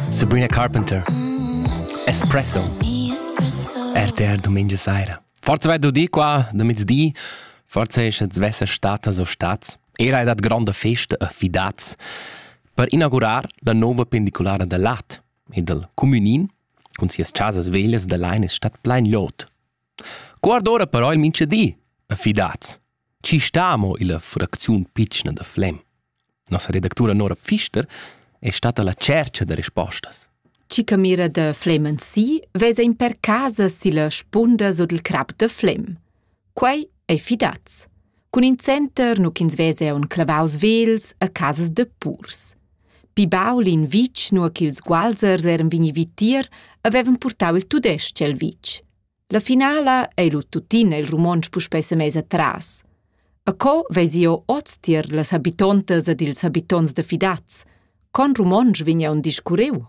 Sabrina Carpenter. Espresso. RTR domenica sera. Forza vai du di qua, da mezdi. Forza è che svessa statas o stats. Era è dat grande festa e fidaz per inaugurar la nuova pendicolare da Lat e del Communin con sias casas veglias da Leines Stadt Plein Lot. Guarda ora però il mincha di, e fidaz. Ci stamo illa fracziun pitschna da Flem. Nossa redactura Nora Pfister è stata la tschercha da respostas. Chi camira da Flemen si vesa in per casa silla spunda sut il crap da Flem. Quei ei fidaz. Cun in center nu ch'ins vese un clavaus vels a casas de purs. Pi baul in vic, nua ch'ils gualzers eran vegni vitier, avevan purtau il tudesc el vic. La finala ei lu tuttina il romontsch puspei semess atras. A co vesi jeu oz tier las habitontas ed ils habitonts da Fidaz? Con romontsch vegn aunc discurriu?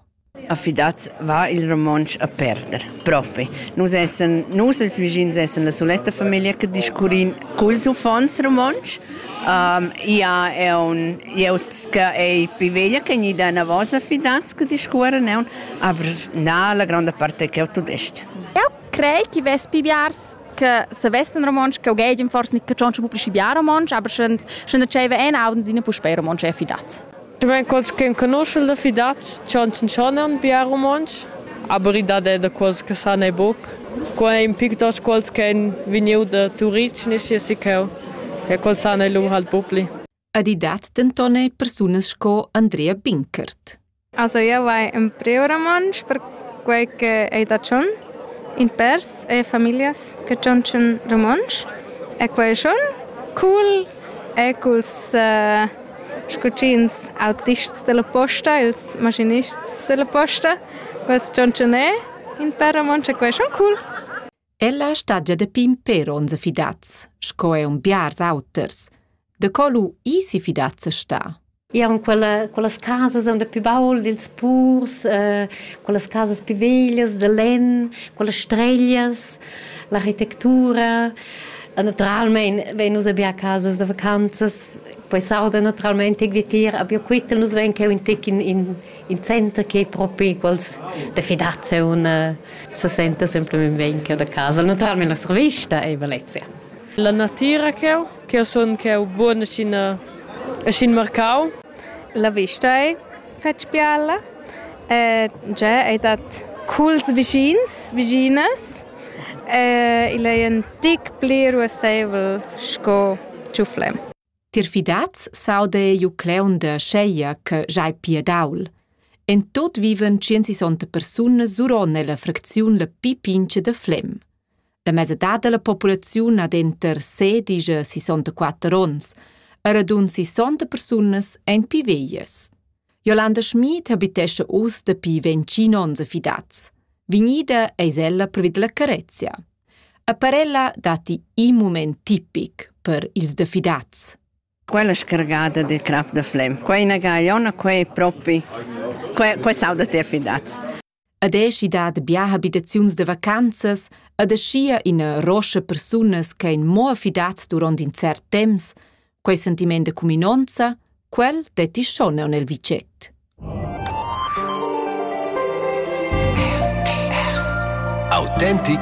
A Fidaz va il romontsch a perder, propi. Nus essen, nus ils vischins essen la soletta famiglia che discurrin culs uffants romontsch. Um, ia è un jeut che è più veglia che gni da una vosa Fidaz che discuoren è un, aber na, la grande parte che è tudest. Eu crei chi vess pi biars che savessan romontsch, che ughegian forse nicht catschontsche pubblici bia romontsch, aber schon schon diceva en auden sine puspei romontsch è fidat. Du mein quals che conosce da fidat, chonchen chonan bia romontsch, aber i dat è da quals che san e buc. Qua è in pic dos quals che en vegniu da Turic, nisci si cheu. E quals san e lung halt bupli. Ed i dat denton er persunas sco Andrea Binkert. Also io vai in preoramantsch per quei che ei da tschon. In pers e familias che tschontschen romontsch. E quei è schon cool. E culs uh, scucins autists della posta, ils maschinists della posta, quels tschontschen è in per romontsch e quei è schon cool. Ella stagia da pimper onza fidats, sco è un biars auters. Da co lu isi fidats sta? Ja, en quella, quellas casas son da più baul dils purs, eh, quellas casas più veglias da lenn, quellas streglias, l'architettura. Naturalmente, wenn nus abbiamo casas da vacanzas, poi sauda naturalmente vietir, aber quittel nus ven che un tec in, in, il center che propi quels de fidaziun eh, se senta semplicemente venker da casa, naturalmente nostra vista e Valencia. La natira che ho, che ho son che ho buona scin scin marcau. La vista è fetg biella. Eh, già è dat culs vicins, viginas. Eh, il è un tic pli ruassevel sco ciuflem. Tier fidaz s'auda jeu cleuun da scheia che sch'ei pia daul. En tut vivan tschincisonta persunas suron ella fracziun la pi pincha da Flem. La mesadad dalla populaziun ha denter sedisch e sisontaquatter onns, e radund sisonta persunas ein pi veglias. Jolanda Schmid habitescha uss dapi ventgin onns a Fidaz. Vignida eis ella privid la carezia. A parella datti in mument tipic per ils diffidats. Quella scargata del crap da flem. Qua è una gagliona, qua è propi... Qua, qua saudate affidats. Ad esci dat bia habitaziuns de vacanzas, ad aschia ina roscia persunas che ein mo affidats duront in cert temps, Quei sentiment de cuminonza, quel detti schon neu nel vicet. Autentic